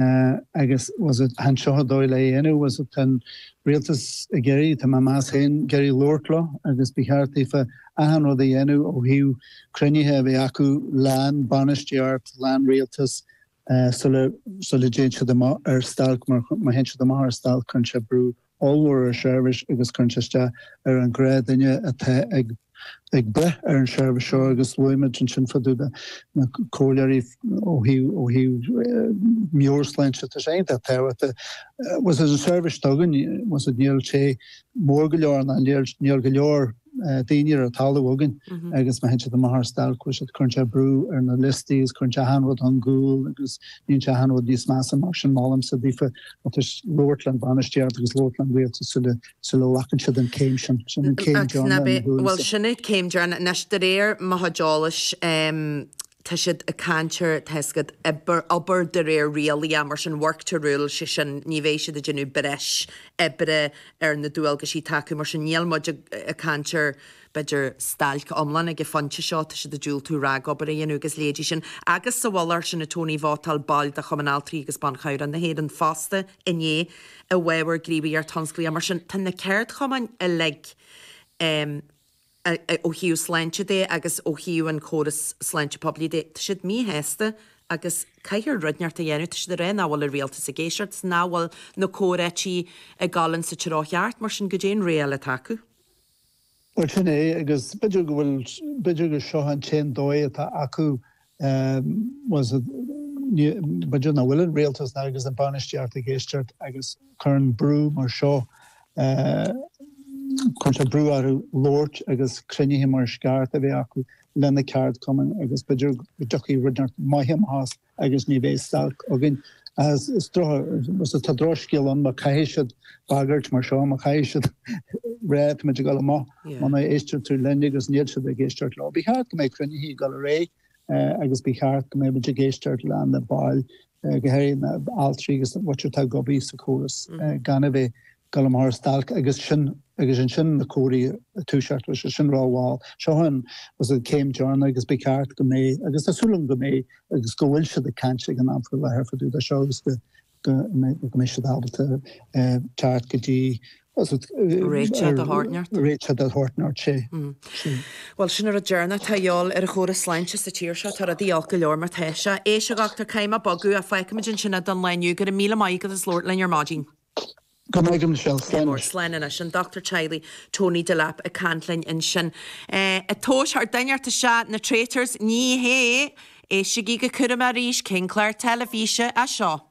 Agus bhfuil a fhios agat, chan seo an dóigh lena dhéanamh? Bhfuil a fhios agat, an rialtas ag iarraidh, tá mé ag meas féin, ag iarraidh labhairt leo agus ba cheart daofa achan rud a dhéanamh ó thaobh cruinnithe a bheith acu le an bainistíocht, le an rialtas sula, sula dtéann siad amach ar stailc mar má théann siad amach ar stailc cuireann sé brú ollmhór ar seirbhís agus cuireann sé isteach ar an ghnáthdhuine atá ag ag brath ar an seirbhís seo agus luaigh muid ansin fá dtaobh de na comhairleoirí ó thaobh ó thaobh meabhairshláinte tá sé iontach tábhachtach bhfuil a fhios agat an seirbhís atá againn bhfuil a fhios agat níl sé mór go leor ná níl níl go leor daoine ar an talamh againn agus má théann siad amach ar stailc bhfuil a fhios agat, cuireann sé brú ar na liostaí agus cuireann sé achan rud ar gcúl agus níonn sé achan rud níos measa mar sin, molaimse daofa tá a fhios agat, labhairt le an bhainistíocht agus labhairt le an rialtas sula, sula ghlacann siad an céim sin, sin an céim deireanach i mo thuairimse. Bhuel sin é céim deireanach, anois de réir mo chuid eolais, tá siad ag caint ar tá a fhios agat, obair, obair de réir rialacha, mar sin, work to rule, sé sin, ní bheidh siad ag déanamh breis oibre ar na dualgaisí atá acu, mar sin, níl muid ag caint ar, b'fhéidir, stailc iomlán ag an phointe seo, tá siad ag diúltú ragobair a dhéanamh agus a leithéidí sin. Agus sa mhullach air sin, a Tony, vótáil baill de Chumann Altraí agus Ban Cabhrach na hÉireann fosta inné i bhfabhar gníomhaíocht thionsclaíoch, mar sin, tá na ceardchumainn uilig, em, ó thaobh sláinte de agus ó thaobh an chóras sláinte poiblí de, tá siad míshásta agus caithfear rud inteacht a dhéanamh. Tá siad ag rá nach bhfuil an rialtas ag éisteacht is nach bhfuil na comhráití ag dul ins an treo cheart, mar sin, goidé an rogha eile atá acu. Bhuel, sin é, agus b'fhéidir go bhfuil, b'fhéidir gur seo an t-aon dóigh atá acu bhfuil a fhios agat b'fhéidir nach bhfuil an rialtas ná agus an bainistíocht ag éisteacht agus cuireann brú mar seo cuireann sé brú orthu labhairt agus cruinnithe mar is ceart a bheith acu le na ceardchumainn agus b'fhéidir go dtiocfaidh rud inteacht maith amach as agus ní bheidh stailc againn ach is droch bhfuil a fhios agat tá drochscéal ann má caithfidh siad bagairt mar seo má chaithfidh siad rá tá muid ag dul amach Muna n-éisteann tú linn agus níl siad ag éisteacht leo, ba cheart go mbeidh cruinnithe ag dul ar aghaidh agus ba cheart go mbeadh muid ag éisteacht le na baill, go háirithe na altraí agus na bhfite atá ag obair sa chóras gan a bheith ag dul amach ar stailc agus sin agus ansin na comhráití ag toiseacht leis sin rá bhuel seo an céim deireanach agus ba cheart go mbeidh agus tá súil agam go mbeidh agus go bhfuil siad ag caint ag an am faoi láthair fá dtaobh de seo agus go go mbeidh siad ábalta teacht go dtí réiteach de shórt inteacht, sea. Bhuel, sin an rud deireanach atá a dhíobháil ar an chóras sláinte sa tír seo, tá rudaí olc go leor mar tá sé. Tá a fhios agat, tá an t-am ag bogadh, fágfaimid ansin é don lá inniu, go raibh míle maith agat as labhairt linn ar maidin. Go maire tú. Slán! Á slán anois. An Dochtúir Teaghlaigh Tony Delap ag caint linn ansin. Ag tomhas tá duine ar téacs ea na Traitors. Ní hea! Éistigí go cúramach arís. Cén clár teilifíse é seo?